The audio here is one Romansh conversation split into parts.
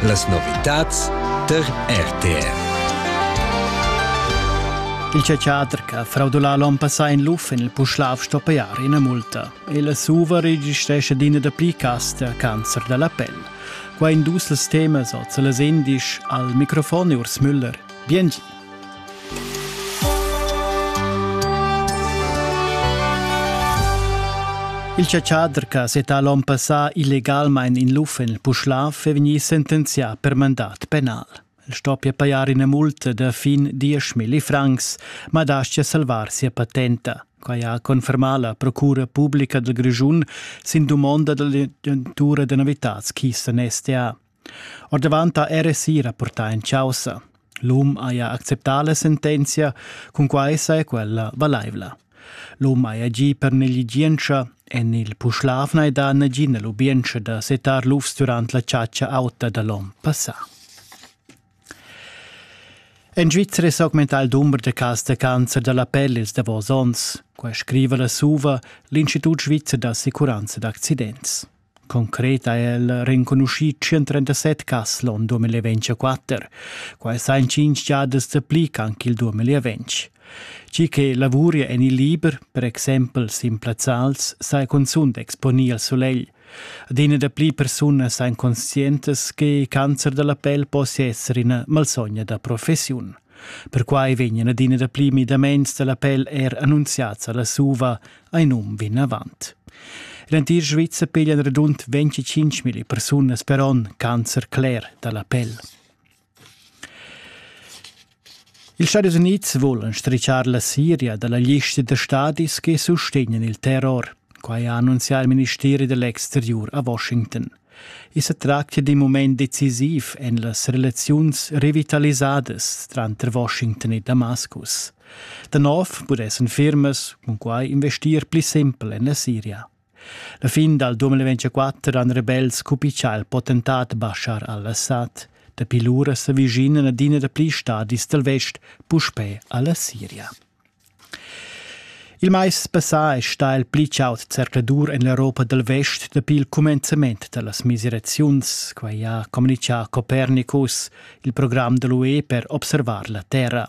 Las novitads tar RTR. Il teater che fraudulà l'on passà in luf in il Puschlav stoppejar ina multa. Il suva registresce d'ina da pli casta cancer da la pel. Qua in dus temas oz les indisch al microfon Urs Müller. Biengi. Il chatschader che ha settà l'onn passà illegalmain in luf en il Puschlav è vegnì sentenzià per mandat penal. El stoppia pajar ina multa da fin 10.000 francs, ma dastia salvar sia patenta. Quai ha confermà la Procura publica dal Grischun sin dumonda da l'agentura da novitads Kisten STA. Ordavant ha RSI rapportà en chaussa. L'um haja acceptà la sentenzia, cunquai saja quella valaivla. L'um haja gì per negligientscha en il Puschlavna ed ha nagina lubientscha da setar lufs durant la chatscha auta da l'onn passà. En Svizzera s'augmenta il dumber da cas da cancer da la pelle ils davos onns. Quai scriva la SUVA, l'Institut svizzer d'assicuranza d'accidents. Concret ha el renconuschì 137 cas l'on 2024. Quai sa in cinq giadas dapli ch'anc il 2020. Tgi che lavuria en il liber, per exempel sin plazzals, sa cunzunt exponir al sulegl. Adina dapli persunas ein conscientas che il cancer della pel possa essere una malsogna da professiun. Perquai vegnan adina dapli midaments della pel er annunziats alla SUVA ein um vinavant. L'entir Svizzer piglia radund 25.000 persunas per onn cancer cler dalla pel. Ils Stadis Unids volan stricciar la Siria dalla lista da stadis che sustegnan il terror. Quai ha annunziato il ministeri dell'exterior a Washington. I sa tractia d'in mument decisiv en las relaziuns revitalisadas tranter Washington e Damascus. Da nov pudessan firmas cun quai investir pli simpel en la Siria. La fin dal 2024 han rebels cupichà il potentat Bashar al-Assad. Dapi lura s'avvischina adina da pli stadis dal vest puspè a la Siria. Il mais passà è stà il pli chaud zercladur en l'Europa dal vest dapi il cumenzament da las miseraziuns. Quai ha communitgà Copernicus, il program da l'UE per observar la Terra.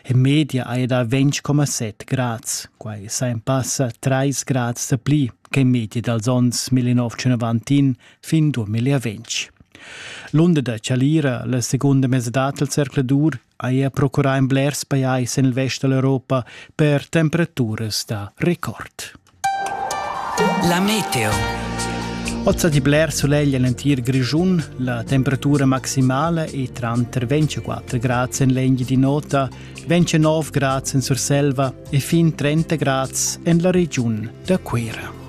En media hai dà 20,7 grads. Quai sa en passa 3 grads da pli che in medi dals onns 1991 fin 2020. L'unda da Chalira, la segunda mesa dal zercladur, haja procurà in blers pajais en il vest da l'Europa per temperaturas da record. La meteo. Ozza di Blair suleglia l'entir Grischun. La temperatura maximale è tranter 24 grad en l'Enghi di Nota, 29 grad en Surselva e fin 30 grad en la regiun da Cuira.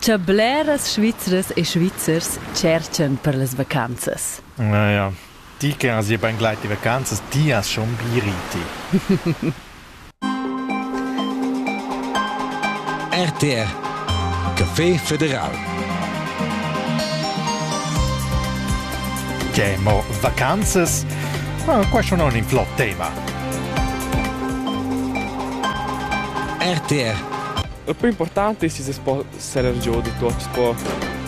Cha bleras Svizras e Svizzers tscherchan per las vacanzas. Na, ja. Di che as ia bain gleit i vacanzas, di as schon bi riti. RTR Café Federal Che mo vacanzas? Ma qua schon non in flot tema. RTR La plü important es chi's po serer giò da tuot il sport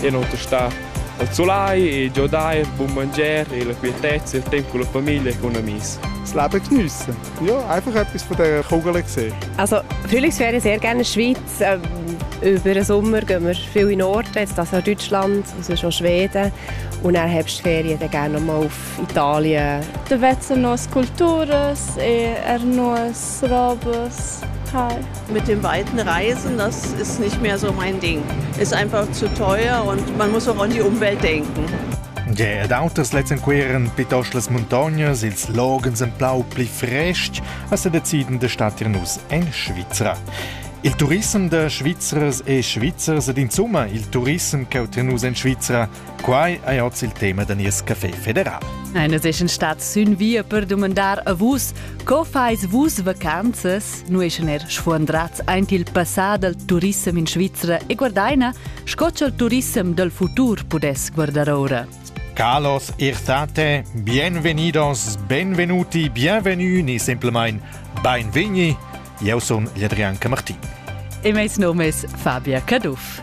e non tastar al sulai e giodair bun mangier e la quietezza e il temp cun la famiglia e cun amis. Slapper geniessen. Ja, einfach etwas von dieser Kugel gesehen. Also, natürlich wäre ich sehr gerne in der Schweiz. Ähm, über den Sommer gehen wir viel in den Norden, jetzt das auch Deutschland, sonst auch Schweden. Und dann Herbstferien dann gerne mal auf Italien. Da vezzano sculturas e ernos Service. Hi. Mit den weiten Reisen, das ist nicht mehr so mein Ding. Ist einfach zu teuer und man muss auch an die Umwelt denken. Gea d'auters lezenqueren pitosch las muntognas, ils loghens en plau pli frestg, as deciden de statir nus en Svizra. Il turissem de Svizzers e Svizzers ed insomma il turissem che nus en Svizra Quai è oz il tema da nies café federal. Eine sechen stat sün via per domandar a vus, co fais vus vacanzas? Nu eschen er sfuandrats aint il passà dal turissem in Svizzera e guardaina, sco ch'el turissem dal futur pudess guardar ora. Carlos Irtate, bienvenidos, benvenuti, bienvenue ni simpelmain beinvegni. Eu sun Adrian Camartin. E meis nom es Fabia Caduff.